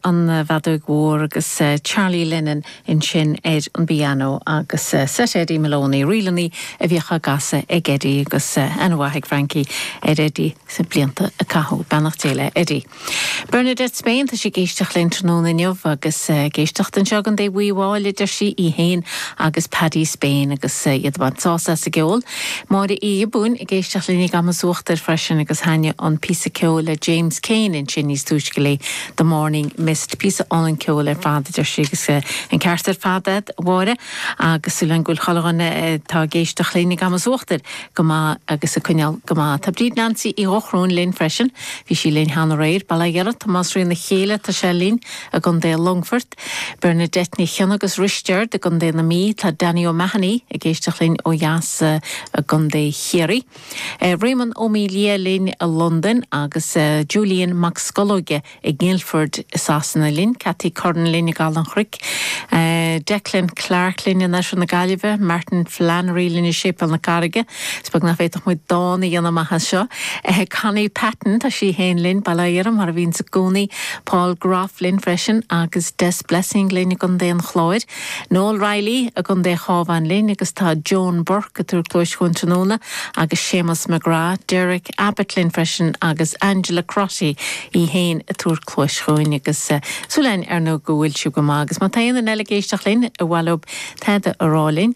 an bhfeadóig mhór agus Charlie Lennon ansin ar an bpianó agus seit Eddie Moloney, ríleanna a bhíodh á gcasadh ag Eddie agus aithne mhaith ag Frankie ar Eddie sna blianta a caitheadh. Beannacht Dé le Eddie. Bernadette Spain tá sí ag éisteacht linn tráthnóna inniu agus ag éisteacht anseo ag an dtaobh aoi bháile deir sí, í fhéin agus Paddy Spain agus iad ag baint sásamh as an gceol. Máire Uí Ghiobúin ag éisteacht linn i gCamas Uachtair freisin agus thaitnigh an píosa ceoil le James Keane ansin níos túisce léi, The Morning Mist. Píosa álainn ceoil ar fad a deir sí agus an ceart ar fad agat, a Mháire, agus súil againn go bhfuil chuile dhuine atá ag éisteacht linn i gCamas Uachtair go maith agus ag coinneáil go maith. Tá Bríd Nancy Uí Dhochrúin linn freisin, bhí sí linn cheana aréir. Bail ó Dhia ort, Tomás Ríona Chéile tá sé linn i gContae Longfoirt. Bernadette Ní Chionnaith agus Risteard i gContae na Mí, tá Danny O'Mahony ag éisteacht linn ó dheas i gContae Chiarraí, Réamonn Ó Maolaodha linn i Londain agus Julian Mac Scolóige i nGuildford i Sasana linn, Cathy Curran linn i gCaladh an Chnoic, Declan Clarke linn in oirthear na Gaillimhe, Martin Flannery linn i Séipéal na Carraige, is beag nach bhféadfadh muid dán a dhéanamh amach anseo! Connie Patton, tá sí féin linn, Baile Átha Fhirdhia mar a bhíonns i gcónaí, Paul Gough linn freisin agus Des Blessing linn i gContae an Chláir, Noel Reilly i gContae an Chabháin linn agus tá Joan Burke ag tabhairt cluais chugainn tráthnóna agus Séamus McGrath, Derek Abbott linn freisin agus Angela Crotty í fhéin ag tabhairt cluais chugainn agus súil againn ar ndóigh go bhfuil sibh go maith agus má tá aon duine eile ag éisteacht linn, a bhfuil uathu tada a rá linn.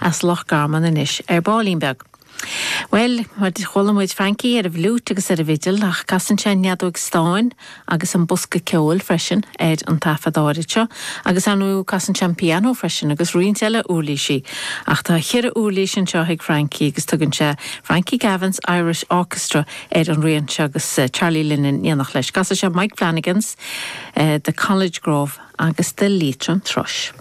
as Loch Garman anois ar baillín beag. Bhuel, mar a dúirt, chuala muid Frankie ar an bhfliúit agus ar an bhfidil, ach casann sé an fheadóig stáin agus an bosca ceoil freisin ar an taifead áirid seo, agus ar ndóigh casann sé an pianó freisin, agus roinnt eile úirlísí. Ach tá cheithre úirlís anseo ag Frankie agus tugann sé Frankie Gavin's Irish Orchestra ar an rian seo agus Charlie Lennon in éineacht leis. Casann sé Mike Flanagan's The College Grove agus The Leitrim Thrush.